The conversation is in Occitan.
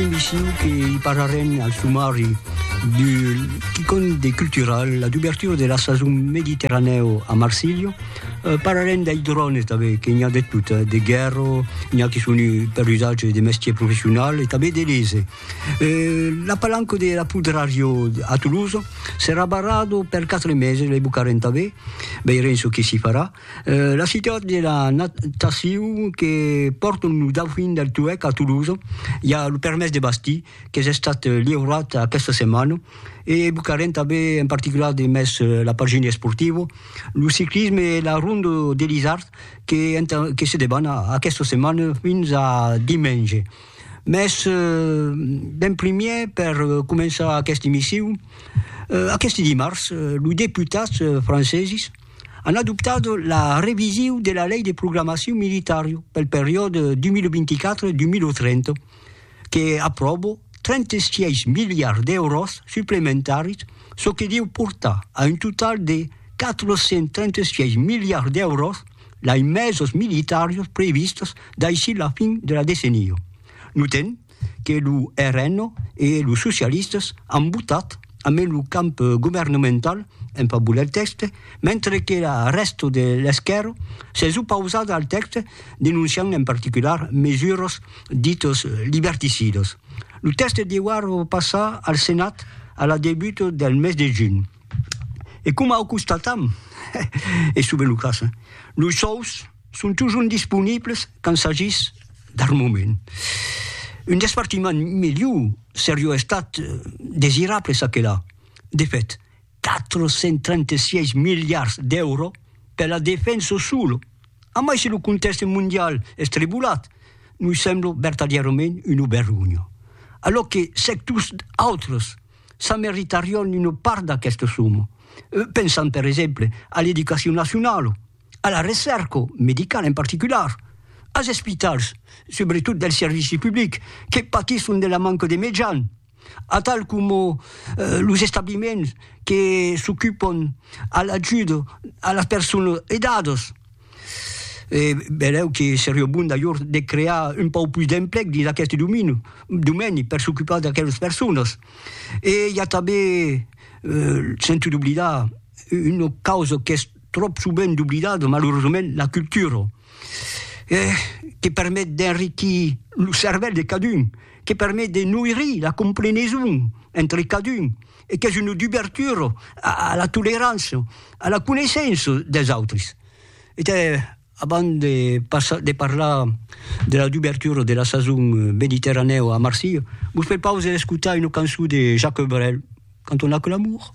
Un viciu que i parlarem al sumari du quicòm de cultural, la dubertura de la sason mediterranèu a Marsilha. Parlarem dei drones tanben, que n'i a de tot, de guèrra, n'i a que son per usatge de mestier professional e tanben de lese. La palanca de la Pudrario a Tolosa serà barrada per quatre meses, lei bocarem tanben, veirem çò que s'i farà. La citat de la natacion que pòrton lo Dauphin del Toueck a Toulouse, i a lo permés de bastir qu'es estat liurat aquesta setmana e evocarem tanben en particular de mes la pagina esportiva, lo ciclisme e la Ronda de l'Isard que entà que se deban aquesta setmana fins a dimenge. Mes d'en primièr per començar aquesta emission, aqueste dimars los deputats franceses, an adoptat la revision de la Lei de Programacion Militari pel periòde 2024-2030, que apròbo 36 miliards d'èuros suplementaris, çò que deu portar a un total de 436 miliards d'èuros d'aimesos militaris previstos daicí la fin de la decenia. Notem que lo RN e los socialistas an votat amé lo camp governamental en favor del tèxte, mentre que la rèsta de l'esquèrra s'es opausada al tèxte denonciant en particular mesuras ditas liberticidas. Lo tèxte deuar passar al Senat a la debuta del mes de junh. E coma o constatam, es sovent lo cas, los sòus, Son totjorn disponibles quand s'agís d'armament. Un despartiment melhor serió estat desirable çà que là. De fèt, 436 miliards d'èuros per la defensa sola, a mai se lo contèxte mondial es tribolat, nos sembla vertadièrament una vergonha, alòc que sectors autres s'ameritarión una part d'aquesta soma. Pensam per exemple a l'educacion nacionala. a la recèrca medicala en particular, as espitals, subretot del servici public, que patisson de la manca de mejan, atal coma los establiments que s'ocupon a l'ajuda a las personas aidadas. E benlèu que seriá bon d'ajor de crear un pauc pus d'emplec dins aqueste domini, domeni per s'ocupar d'aquelas personas. E i a tanben, sento d'oblidar, una causa qu'es, tròp sovent doblidada, malauresament, la cultura, que permet d'enriquir lo cervèl de cadun, que permet de noirir la compreneson entre cadun e qu'es una dubertura a la tolerança, a la coneissença des autris. E tà, abans de passar, de parlar de la dubertura de la sason mediterranèu a Marsilha, vos prepaus a escotar una cançon de Jacques Brel, canton L'amour.